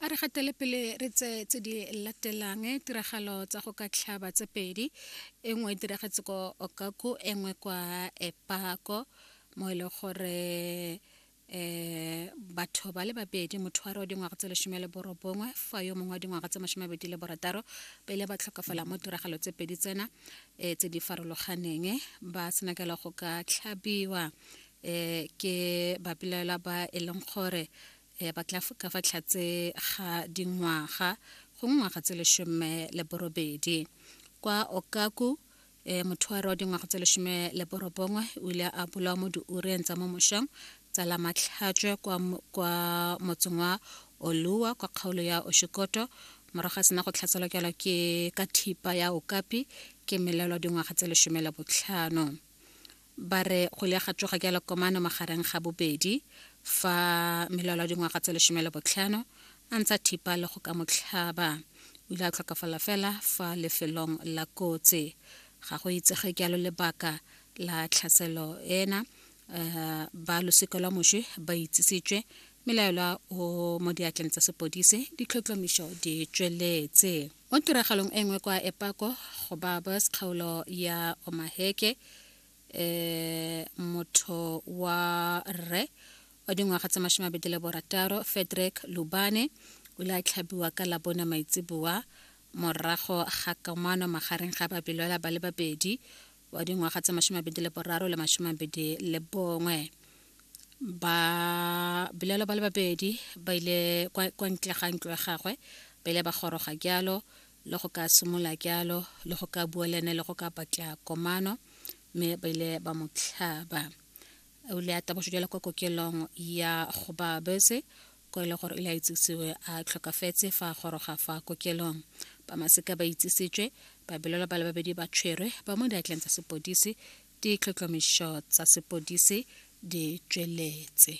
a re gatele pele re tse tse di latelang eh, tiragalo tsa go ka tlhaba tse pedi e nngwe e diragetse ko okaku e nngwe kwa epako mo e leng gore eh batho ba le babedi motho wa re wa dingwaga tse lesome le borobongwe fa yo mongwe wa dingwaga tse masome abedi le borataro ba ile ba tlhokafala mo tiragalo tse pedi tsena um tse di farologaneng eh, ba senakela go ka tlhabiwa eh ke bapelaela ba e leng gore eh ba tla ka fa tlhatse ga dingwaga go ngwaga tse leshome le borobedi kwa okaku eh mothoare wa dingwaga tse leshome le borobongwe o ile a bolawa mo diureng tsa mo mošong tsa la matlhatswe kwa, kwa motseng wa olua kwa kgaolo ya oshikoto morago a sena go tlhaselwa ke ke ka thipa ya okapi ke melelo dingwaga tse leshome le botlhano ba re go ile ga tsoga jalo komano magareng ga bobedi fa melwalo dingwaga tse lesome le botlhano a ntse a thipa le go ka motlhaba o ile a tlhokafala fela fa lefelong la kotsi ga go itsege jalo lebaka la tlhaselo ena um ba losika lwa moswi ba itsisitswe melaelwa o mo diatleng tsa sepodise ditlhotlhomišo di tsweletse Mo tiragalong e nngwe kwa Epako go Barbers kgaolo ya Omaheke e motho wa rre wa dingwaga tsa mashome a le borataro Fedrick Lubane o ile a tlhabiwa ka labone maitseboa morago ga kamano magareng ga babelwela ba le babedi wa dingwaga tse masome mabedi le boraro le masome mabedi le bongwe ba bilelo ba le babedi ba ile kwa ntle ga ntlo ya gagwe ba ile ba goroga jalo le go ka simola jalo le go ka bua le ene le go ka batla komano mme ba ile ba mo tlhaba o ile a taboso jalo kwa kokelong ya go ba bese ko e le gore ile a itsisiwe a tlhokafetse fa a goroga fa kokelong ba maseka ba itsisitswe babelelwa ba le babedi ba tshwerwe ba mo diatleng tsa sepodisi ditlhotlhomišo tsa sepodisi di tsweletse